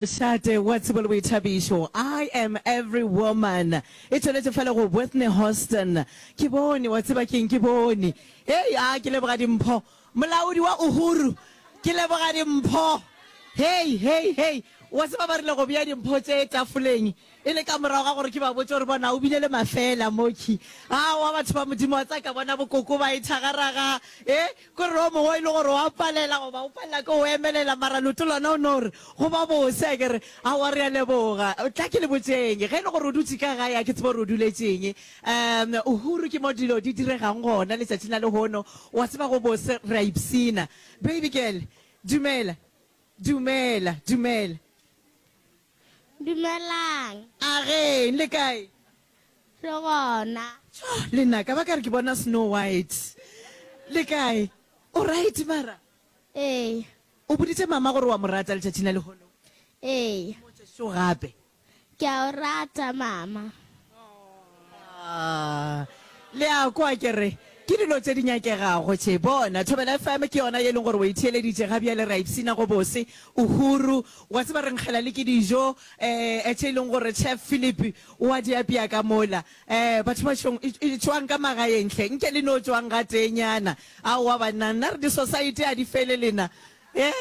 Šate wa tsebo le boithabišo, I am every woman, e tšweletše fale go Whitney Houston, Ke bone, wa tseba ke'ng, ke bone. Hei, a, ke leboga dimpho. Molaodi wa Uhuru, Ke leboga dimpho. Hei, hei, hei, wa tseba ba rile go bea dimpho tše tafoleng. E le ka morago ga gore ke ba botše gore, Bona, o bile le mafeela mokhwi. Aowa, batho ba Modimo, wa tseka, bona bokoko ba ithagaraga. E, ko re o mongwe e le gore o a palela, goba o palela ke go emelela, mara leoto lona o no re, Go ba bose. A ke re, Aowa, re a leboga. Tla ke le botšeng, ge e le gore o dutše ka gae, a ke tsebe gore o duletše eng. Um, Uhuru, ke mo dilo di diregang gona letšatšing la lehono. O a tseba, go bose, re a ipshina. Baby girl, dumela. Dumela, dumela. Dumelang. Ageng, le kae? Re gona. Tjo, le nna ka ba ka re ke bona Snow White. Le kae? O right mara? Ee. O boditše mama gore wa mo rata letšatšing la lehono? Ee. Mmotše šo gape. Ke a o rata mama. le a kwa ke re ke dilo tse di nyakegago tše bona thobela fm ke yona ye e leng gore o e theeleditše ga bjale ra ipshina go bose uhuru wa tseba re nkgela le ke dijo um eh, tše e leng gore chef philip wa di apea ka mola um batho ba šong e, e tšwang ka magaentle nke le no tšwang ga tenyana a wa banna nna re di-society a di fele lena Ee,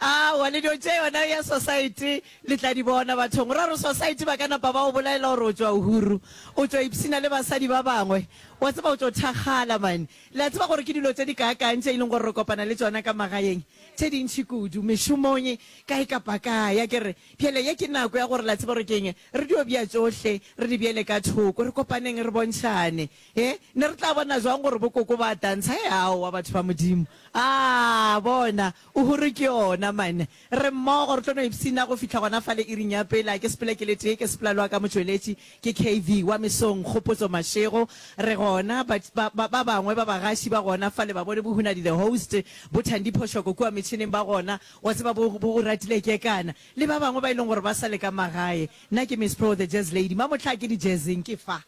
aowa, le dio tše yona ya Sosaete le tla di bona bathong. O ra gore Sosaete ba ka napa ba go bolaela gore o tšwa Uhuru, o tšwa ipshina le basadi ba bangwe. O a tseba o tšo thakgala, mane. Le a tseba gore ke dilo tše di kaakang tše e leng gore re kopana le tšona ka magaeng, tše dintši kudu, mešomong, kae kapa kae, a ke re? Bjale ye ke nako ya gore, la tseba gore ke eng, re dio bea tšohle, re di beele ka thoko, re kopaneng, re bontšhane. He, ne re tla bona jwang gore bokoko ba tantsha? He, aowa, batho ba Modimo. A, bona, o hore ke yona, man. Re mmogo, re tlo no ipshina go fihla gona fale iring ya pele. A ke sepela ke le tee, ke sepela le wa ka motšweletši, ke KV, wa mesong, Kgopotso, Mašego. Re gona, ba, ba, ba, ba bangwe ba bagaši ba gona fale, ba bone bohunadi, the host, bo Thandi Phoshoko kua metšhineng ba gona, wa tseba, bo, bo go ratile kekana, le ba bangwe ba e leng gore ba sa le ka magae. Nna ke Miss Pro, the Jazz Lady. Mamohla a ke di-jazzeng, ke fa.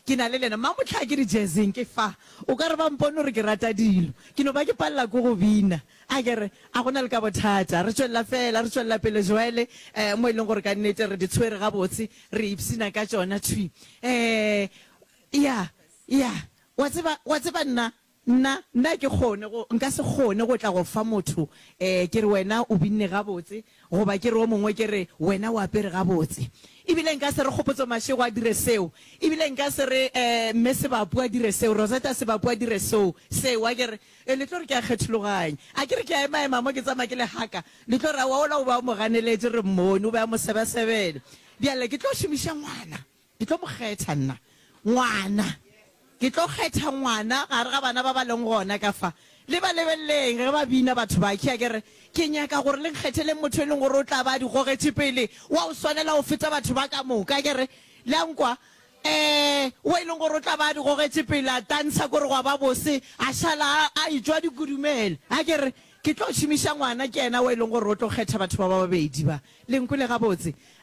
Ke na le lena. Mang mohlaa ke di jazzing ke fa? O ka re ba mpone gore ke rata dilo. Ke no ba ke palela ko go bina. A ke re, A go na le ka bothata. Re tšwelela feela, re tšwelela pele joele, eh, mo e leng gore ka nnete re di tshwere gabotse, re ipshina ka tšona thwi. Eh, ya, ya. Wa tseba, wa tseba nna, Nna, nna ke kgone go, nka se kgone go tla go fa motho, e, ke re, Wena o binne gabotse, goba ke re o mongwe, ke re, Wena o apere gabotse. Ebile nka se re Kgopotso Mashego a dire seo. Ebile nka se re, e, Mme Sebapu a dire seo, Rosetta Sebapu a dire soo, seo. A ke re, E, le tlo re ke a kgethologanya. A ke re ke a emaema mo ke tsamaya ke le haka, le tlo re, Aowa, ola o be a mo ganeletše, re mmone, o be a mo sebasebela. Bjale ke tlo šomiša ngwana. Ke tlo mo kgetha nna. Ngwana. Ke tlo kgetha ngwana gare ga bana ba ba leng gona ka fa. Le ba lebeleleng ge ba bina batho ba. Ke a ke re, Ke nyaka gore le nkgetheleng motho e leng gore o tla ba a di gogetše pele, wa go swanela go feta batho ba ka moka. Ke re, Le a nkwa? Ee, wo e leng gore o tla ba a di gogetše pele, a tantsha kore gwa ba bose, a šala a, a etšwa a di kudumela. A ke re, Ke tlo šomiša ngwana, ke yena wo e leng gore o tlo kgetha batho ba ba babedi ba. Le nkwele gabotse?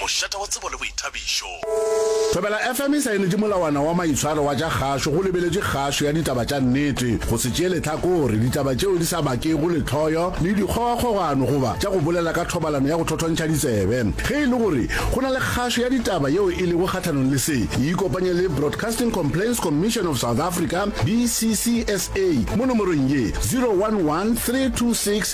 Mošate wa tsebo le boithabišo. Thobela FM e saenetše molawana wa maitshwaro wa tša kgašo go lebeletše kgašo ya ditaba tša nnete, go se tšee lehlakore, ditaba tšeo di sa bakego lehloyo le dikgogakgogano goba tša go bolela ka thobalano ya go thothontšha ditsebe. Ge e le gore go na le kgašo ya ditaba yeo e lego kgahlanong le se, e ikopanye le Broadcasting Complaints Commission of South Africa, BCCSA, mo nomorong ye, 011 326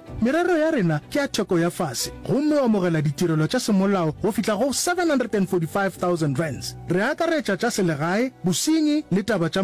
Merero ya rena ke ya theko ya fase gomme o amogela ditirelo tša semolao go fihla go R745,000. Re akaretša tša selegae, bosenyi le taba tša